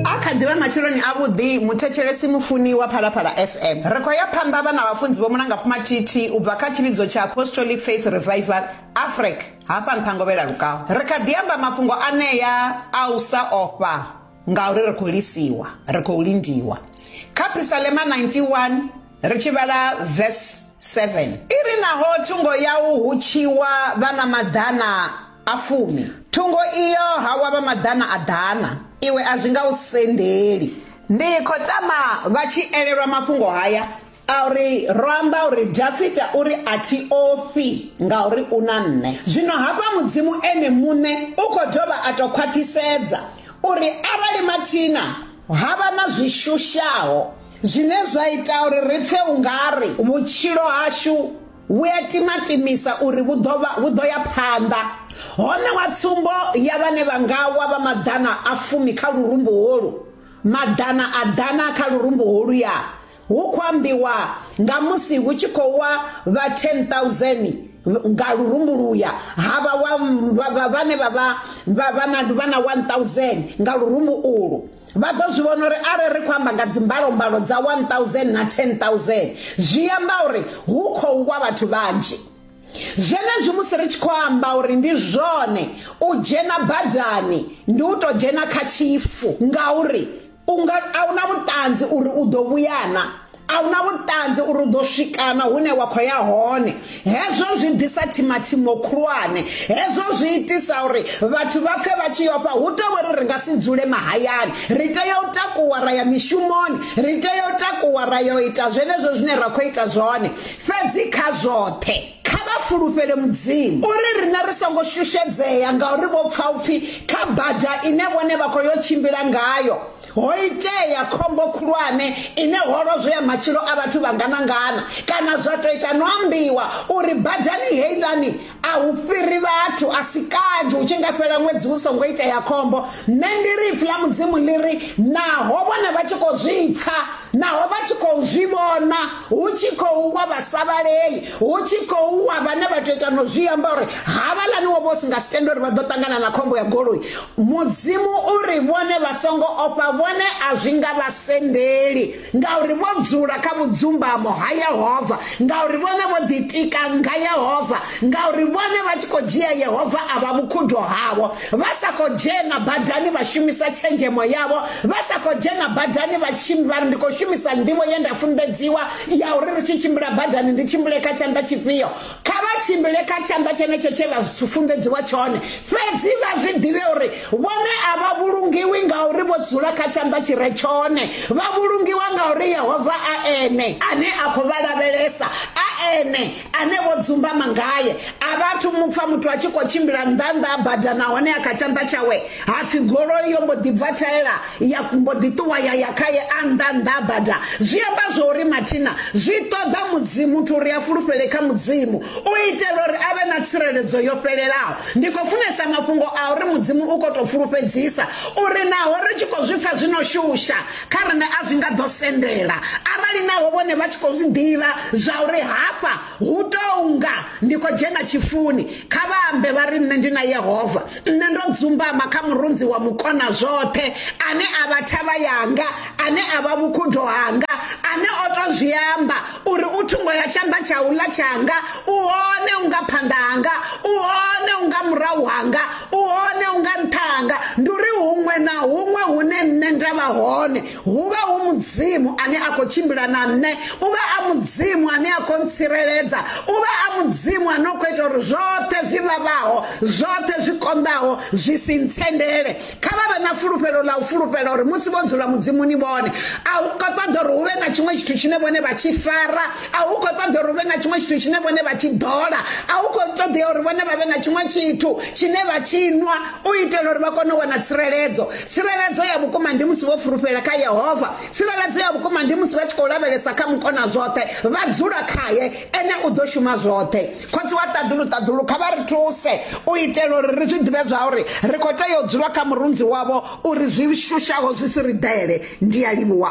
A kha ḓivha matsheloni a vhuḓi muthetshelesi mufuni wa Phalaphala FM. Ri khou ya phanḓa vhana vhafunzi vho Mulanga Phumathithi u bva kha tshivhidzo tsha Apostolic Faith Revival Afric hafha Nṱhangovhela Lukau. Ri kha ḓi amba mafhungo anea a u sa ofha ngauri ri khou lisiwa, ri khou lindiwa. Kha Phisalema 91 ri tshi vhala verse 7. I ri naho thungo yau hu tshiwa vha na maḓana. A fumi. Thungo iyo ha wa vha maḓana a ḓana, iwe a zwi nga u sendeli. Ndi khou tama vha tshi elelwa mafhungo haya a uri ro amba uri Dafita u ri, A thi ofhi, ngauri u na nṋe. Zwino hafha Mudzimu Ene muṋe u khou dovha a tou khwaṱhisedza uri arali mathina ha vha na zwi shushaho zwine zwa ita uri ri pfe u nga ri vhutshilo hashu Vhu a timatimisa uri vhu ḓo vha vhu ḓo ya phanḓa. Ho ṋewa tsumbo ya vhane vha nga wa vha maḓana a fumi kha lurumbu holu, maḓana a ḓana kha lurumbu holuya. Hu khou ambiwa nga musi hu tshi khou wa vha 10,000 nga lurumbu luya, ha vha wa vhane vha vha vha na 1,000 nga lurumbu ulu. vha ḓo zwi vhona uri arali ri khou amba nga dzimbalombalo dza 1000 na 10000 zwi amba uri hu khou wa vhathu vhanzhi zwenezwi musi ri tshi khou amba uri ndi zwone u dzhena badani ndi u tou dzhena kha tshifu ngauri u nga a hu na vhuṱanzi uri u ḓo vhuyana a una vhuṱanzi uri u ḓo swikana hune wa khou ya hone hezwo zwi ḓisa thimathimo khulwane hezwo zwi itisa uri vhathu vha pfhe vha tshi yofha hu tou uri ri nga si dzule mahayani ri tea u takuwa ra ya mishumoni ri tea u takuwa ra yo ita zwenezwo zwine ra khou ita zwone fhedzi kha zwoṱhe kha vha fulufhele mudzimu uri riṋe ri songo shushedzea ngauri vho pfha upfhi kha bada ine vhone vha khou yo tshimbila ngayo Ho itea khombo khulwane ine ho lozwea matshilo a vhathu vhangana-ngana kana zwa tou ita no ambiwa uri badani heiḽani a hu fhiri vhathu, a si kanzhi hu tshi nga fhela ṅwedzi hu songo itea khombo. Nṋe ndi ri Ipfi ḽa Mudzimu ḽi ri, Naho vhone vha tshi khou zwi pfa, naho vha tshi khou zwi vhona hu tshi khou wa vha sa vhalei, hu tshi khou wa vhane vha tou ita no zwi amba uri havhaḽani wo vho si nga si tende uri vha ḓo ṱangana na khombo ya goloi mudzimu uri vhone vha songo ofha vhone a zwi nga vha sendeli ngauri vho dzula kha vhudzumbamo ha yehova ngauri vhone vho ḓitika nga yehova ngauri vhone vha tshi khou dzhia yehova a vha vhukhudo havho vha sa khou dzhena badani vha shumisa tshenzhemo yavho vha sa khou dzhena badani vha tshi vha ri ndi khou shumisa nḓivho ye nda funḓedziwa ya uri ri tshi tshimbila badani ndi tshimbile kha tshanḓa tshifhio kha vha tshimbile kha tshanḓa tshenetsho tshe vha funḓedziwa tshone fhedzi vha zwi ḓivhe uri vhone a vha vhulungiwi nga uri vho dzula kha tshanḓa tshi re tshone vha vhulungiwa nga uri yehova a ene ane a khou vha lavhelesa a ene ane vho dzumbama ngaye a vhathu mupfa muthu a tshi khou tshimbila nnḓanḓa a bada nahone a kha tshanḓa tshawe ha pfhi goloi yo mbo ḓi bva thaela ya mbo ḓi ṱuwa ya ya khaye a nnḓanḓa a bada zwi amba zwo uri mathina zwi ṱoḓa mudzimu muthu uri a fulufhele kha mudzimu u itela uri a vhe na tsireledzo yo fhelelaho ndi khou funesa mafhungo a uri mudzimu u khou tou fulufhedzisa uri naho ri tshi khou zwi pfa zwi no shusha Kha riṋe a zwi nga ḓo sendela arali naho vhone vha tshi khou zwi ḓivha zwa uri hafha hu tou nga ndi khou dzhena tshifuni. Kha vha ambe vha ri, Nṋe ndi na Yehova. Nṋe ndo dzumbama kha Murunzi wa Mukona zwoṱhe, ane a vha thavha yanga, ane a vha vhukhudo hanga, ane o tou zwi amba. uri u thungo ya tshanḓa tsha u ḽa tshanga u hone u nga phanḓa hanga u hone u nga murahu hanga u hone u nga nṱha hanga ndi uri huṅwe na huṅwe hune nṋe nda vha hone hu vha hu mudzimu ane a khou tshimbila na nṋe u vha a mudzimu ane a khou ntsireledza u vha a mudzimu ane o khou ita uri zwoṱhe zwi vhavhaho zwoṱhe zwi konḓaho zwi si ntsendele kha vha vhe na fulufhelo ḽa u fulufhela uri musi vho dzula mudzimuni vhone a hu khou ṱoḓa uri hu vhe na tshiṅwe tshithu tshine vhone vha tshi fara a hu khou ṱoḓa uri hu vhe na tshiṅwe tshithu tshine vhone vha tshi ḓola a hu khou ṱoḓea uri vhone vha vhe na tshiṅwe tshithu tshine vha tshi nwa u itela uri vha kone u wana tsireledzo tsireledzo ya vhukuma ndi musi vho fulufhela kha yehova tsireledzo ya vhukuma ndi musi vha tshi khou lavhelesa kha mukona zwoṱhe vha dzula khaye ene u ḓo shuma zwoṱhe Khotsi wa ṱaḓulu ṱaḓulu, kha vha ri thuse u itela uri ri zwi ḓivhe zwauri ri khou tea u dzula kha murunzi wavho uri zwi shushaho zwi si ri ḓele. Ndi a livhuwa.